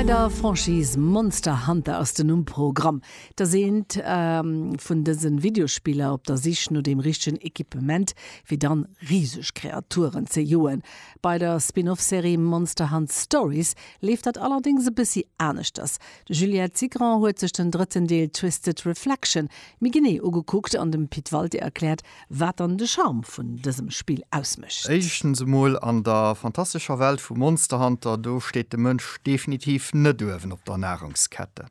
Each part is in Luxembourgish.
Bei der Franchise Monster Hunter ass den Numm Pro-gramm, dass eent vun dësen Videospiller op der Sich no deem richtegen Equipement fir dann riseg Kreaturen ze joen. Bei der Spin-off Serie Monster Hunt Stories leeft dat allerdéngs e bëssi aneschters. D'Juliette Cigrand huet sech den drëtten Deel Twisted Reflection méi genee ugekuckt an dem Pit Walté erkläert Wat dann de Charme vun dësem Spill ausmécht? Éischtens emol, an der fantastescher Welt vu Monster Hunter, do steet de Mënsch definitiv net uewen op der Nahrungskette.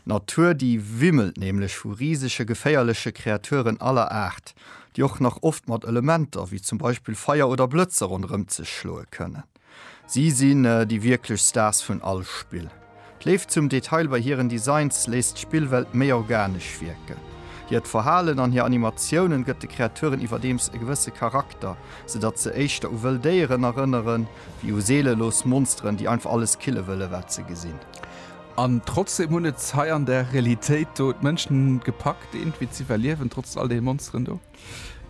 D'Natur, déi wimmelt nämlech vu risege geféierleche Kreaturen aller Aart, déi och nach oft mat Elementer, wéi zum Beispill Feier oder Blëtzer, ronderëm sech schloe kënnen. Si sinn déi wierklech Stars vun all Spill. D'Léift zum Detail bei hiren Designs léisst d'Spillwelt méi organesch wierken. Hiert Verhalen an hir Animatiounen gëtt de Kreaturen iwwerdeems e gewësse Charakter, sou datt se éischter u wëll Déieren erënneren, wéi u seelelos Monsteren, déi einfach alles kille wëllen, wat se gesinn. An trotzdeem hunn et hei an der Realitéit do d'Mënschen gepackt, eenent wéi z'iwwerliewen, trotz all deene Monsteren do.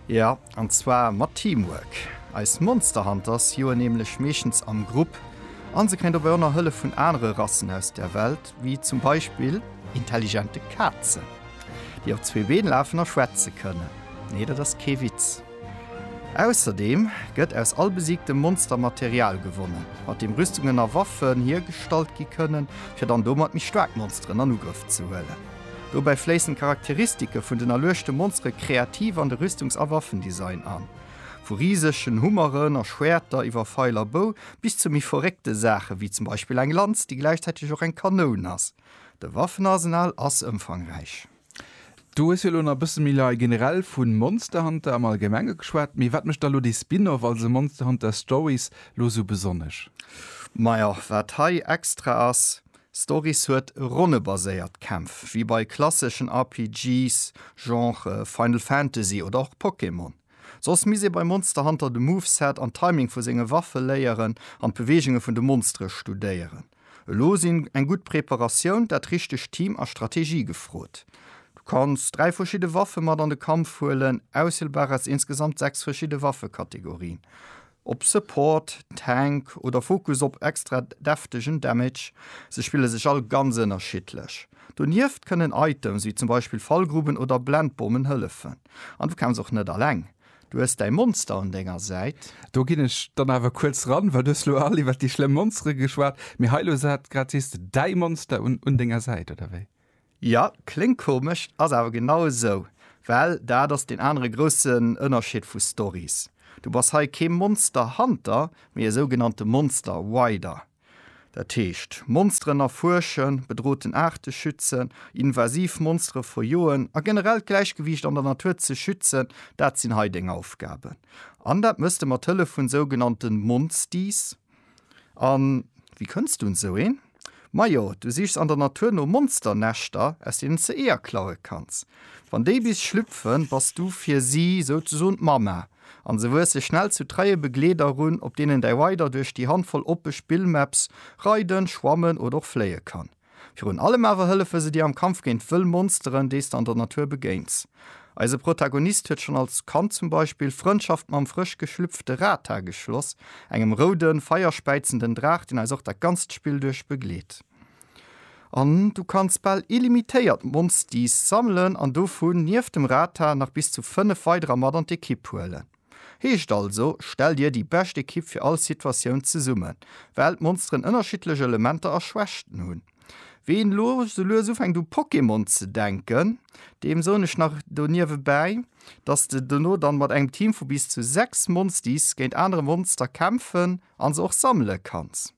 Jo, an zwar mat Teamwork. Eis Monster Hunters joen nämlech meeschtens am Grupp a se kréien dobäi och nach Hëllef vun anere Rassen aus der Welt, wéi zum Beispill intelligente Kazen, déi op zwee Been lafen a schwätze kënnen. Nee, dat ass kee Witz. Ausserdeem gëtt aus all besiegtem Monster Material gewonnen, mat deem Rüstungen a Waffen hiergestallt gi kënnen, fir dann domat méi staark Monsteren an Ugrëff ze huelen. Dobäi fléissen d'Charakteristike vun den erluechte Monsteren kreativ an de Rüstungs a Waffendesign an. Vu risegen Hummeren a Schwäerter iwwer Feil a Bou bis zu méi verréckte Saachen, wéi zum Beispill eng Lanz, déi gläichzäiteg och eng Kanoun ass. De Waffenarsenal ass ëmfangräich. Du hues jo elo nach e bësse méi lei generell vu Monster Hunter am Allgemenge geschwat, mee wat mécht da elo dee Spin-off, also Monster Hunter Stories, elo esou besonnesch? Majo, wat hei extra ass, Stories huet ronnebaséiert Kämpf, wéi bei klasseschen RPGs, Genre Final Fantasy oder och Pokémon. Soss misst ee bei Monster Hunter de Moveset an Timing vu senge Waffe léieren an d'Beweegunge vun de Monstere studéieren. Elo sinn eng gutt Preparatioun, dat richtegt Team a Strategie gefrot. Du kanns dräi verschidde Waffe mat an de Kampf huelen, auswielbar aus insgesamt sechs verschidde Waffekategorien. Op Support, Tank oder Fokus op extra deftegen Damage, se spille sech all ganz ënnerschiddlech. Donieft kënnen Items wéi zum Beispill Fallgruben oder Blendbommen hëllefen. An du kämpfs och net alleng, du hues däi Monster un denger Säit. Do ginn ech dann awer kuerz ran, well du hues elo all iwwer déi schlëmm Monstere geschwat, mee hei elo, sat grad, sees de däi Monster un denger Säit, oder wéi? Jo, kléngt komesch, ass awer genau esou, well dat ass deen anere groussen Ënnerscheed vu Stories. Du bass hei kee Monster Hunter, mee e sougenannte Monster Rider. Dat heescht, Monsteren erfuerschen, bedroten Aarte schützen, invasiv Monstere verjoen a generell d'Gläichgewiicht an der Natur ze schützen, dat sinn hei deng Aufgaben. An dat mëss de mat Hëllef vun sougenannte Monsties. An wéi kënns du un esou een? Majo, du sichs an der Natur no Monsternäschter, aus deenen s de Eeër klaue kanns. Wann déi bis schlüpfen, bass du fir si souzesoen d'Mamma an se wuesse schnell zu treie Begleeder erun, op deenen däi Rider duerch déi Handvoll oppe Spillmaps reiden, schwammen oder och fléie kann. Virun allem awer hëllefe se dir am Kampf géint wëll Monsteren, déi s de an der Natur begéins. Eise Protagonist huet schonn als Kand zum Beispill Frëndschaft mam frësch geschlüpfte Rata geschloss, engem roude, feierspäizenden Draach, deen eis och dat ganzt Spill duerch begleet. An du kanns bal illimitéiert Monsties sammelen an dovun, nieft dem Rata, nach bis zu fënnef weiderer mat an d'Ekipp huelen. Heescht also, stell dir déi bescht Ekipp fir all Situatioun zesummen, well d'Monsteren ënnerschiddlech Elementer a Schwächten hunn. Ween lo sou lues ufänkt u Pokémon ze denken, deem soen ech nach do niewebäi, dass de dono dann mat engem Team vu bis zu 6 Monsties géint anere Monster kämpfen an se och sammele kanns.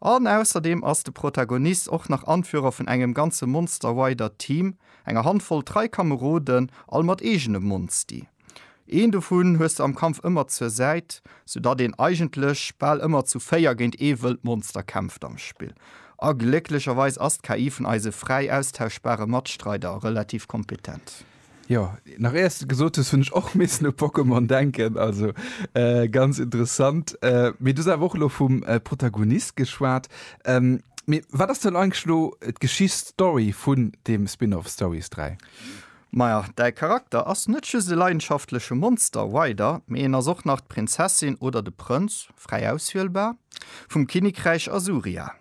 An ausserdeem ass de Protagonist och nach Anführer vun engem ganze Monster-Rider Team, enger Handvoll trei Kameroden, all mat eegene Monsti. Een dovun hues de am Kampf ëmmer zur Säit, sou datt een eigentlech bal ëmmer zu véier géint ee wëllt Monster kämpft am Spill. A glécklecherweis ass d'KI vun eise fräi austauschbare Matstreider relativ kompetent. Jo, nach éiers de gesot hues, hunn ech och missen u Pokémon denken, also ganz interessant. Mee du hues awer och elo vum Protagonist geschwat. Mee wat ass dann eigentlech elo d'Geschicht, d'Story vun deem Spin-off Stories 3? Maja, däi Charakter ass net just e leidenschaftleche Monster Rider, mee en ass och nach d'Prinzessin oder de Prënz, fräi auswielbar, vum Kinnekräich Asuria.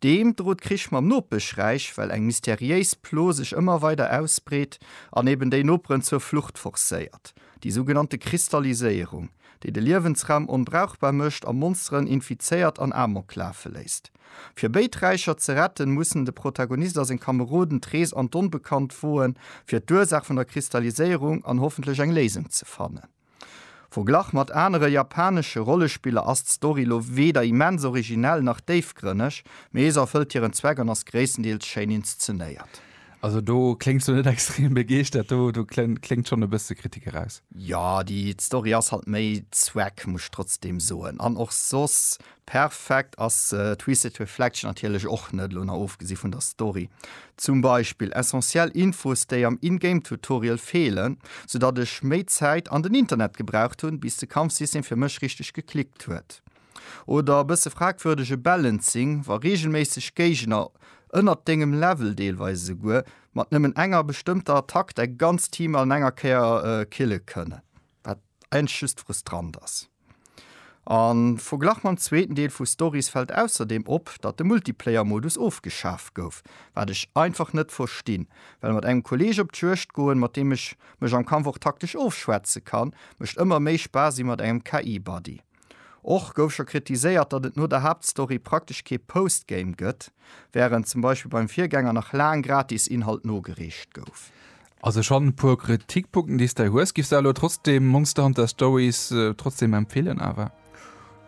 Deem drot Krich mam Nopeschräich, well eng mysteriéis Plo sech ëmmer weider ausbreet an eben déi Noperen zur Flucht forcéiert, déi sougenannte Kristalliséierung, déi de Liewensraum onbrauchbar mécht a Monsteren infizéiert an Amok lafe léisst. Fir béid Räicher ze retten, mussen de Protagonist a seng Kameroden d'Rees an d'Onbekannt woen, fir d'Ursaach vun der Kristalliséierung an hoffentlech eng Léisung ze fannen. Verglach mat anere japanesche Rollespiller ass d'Story lo weder immens originell nach déifgrënneg, mee se erfëllt hiren Zweck an ass gréisstendeels schéin inszenéiert. Also do kléngs du net extrem begeeschtert, do do kléngt schonn e bësse Kritik eraus. Jo, déi d'Story ass halt méi Zweck, muss ech trotzdem soen, an och soss Perfekt ass Twisted Reflection natierlech och net, elo nach ofgesi vun der Story. Zum Beispill essentiell Infos déi am In-Game Tutorial feelen, sou datt ech méi Zäit an den Internet gebraucht hunn bis de Kampfsystem fir mech richteg geklickt huet. Oder e bësse fragwürdege Balancing, wa reegelméisseg Géigner ënnert dengem Level, deelweis esouguer mat nëmmen enger bestëmmter Attack, däi ganzt Team an enger Kéier kille kënnen. Wat eigentlech just frustrant ass. An verglach mam zweeten Deel vu Stories fällt ausserdeem op, datt de Multiplayer-Modus ofgeschaf gouf. Wat ech einfach net verstinn. Well mat engem Kolleeg op d'Juegd goen, mat deem ech mech am Kampf och taktesch ofschwätze kann, mécht ëmmer méi Spaass ewéi mat engem KI-Buddy. Och gouf scho kritiséiert, datt et no der Haaptstory praktesch kee Postgame gëtt, wärend zum Beispill beim Virgänger nach laang gratis Inhalt nogereecht gouf. Also schonn e puer Kritikpunkten déi s de hues. Giffs de elo trotzdem Monster Hunter Stories trotzdem empfeelen awer?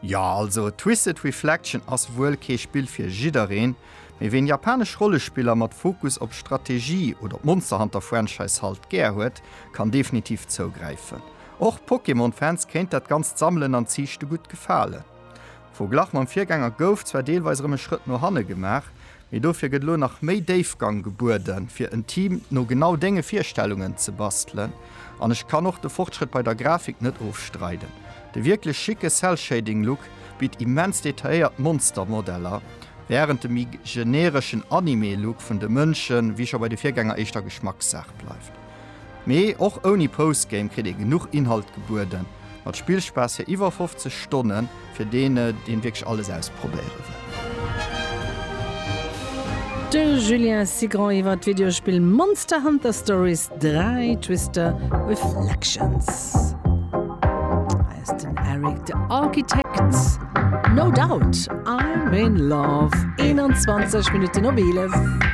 Jo, also Twisted Reflection ass wuel kee Spill fir jiddereen, mee ween japanesch Rollespiller mat Fokus op Strategie oder d'Monster Hunter Franchise halt gär huet, kann definitiv zougräifen. Och Pokémon-Fans kéint dat ganzt Sammelen an Ziichte gutt gefalen. Am Verglach mam Virgänger gouf zwar deelweis erëm e Schrëtt no hanne gemaach, mee dofir gëtt elo nach méi Déifgang gebueden, fir en Team no genau denge Virstellungen ze bastelen. An ech kann och de Fortschrëtt bei der Grafik net ofstreiden, de wierklech schicke Cell-Shading-Look bitt immens detailléiert Monster-Modeller, wärend de méi genereschen Anime-Look vun de Mënschen, wéi scho bei de Virgänger, éischter Geschmackssaach bleift. Mee och ouni Postgame kritt ee genuch Inhalt gebueden. Mat Spillspaass fir iwwer 50 Stonnen, fir deen deen wierklech alles ausprobéieren wëll. De Julien Cigrand iwwer d'Videospill Monster Hunter Stories 3, Twister Reflections. Hei ass den Eric de Architect. No Doubt, I'm in Love, 21 Minutten op 11.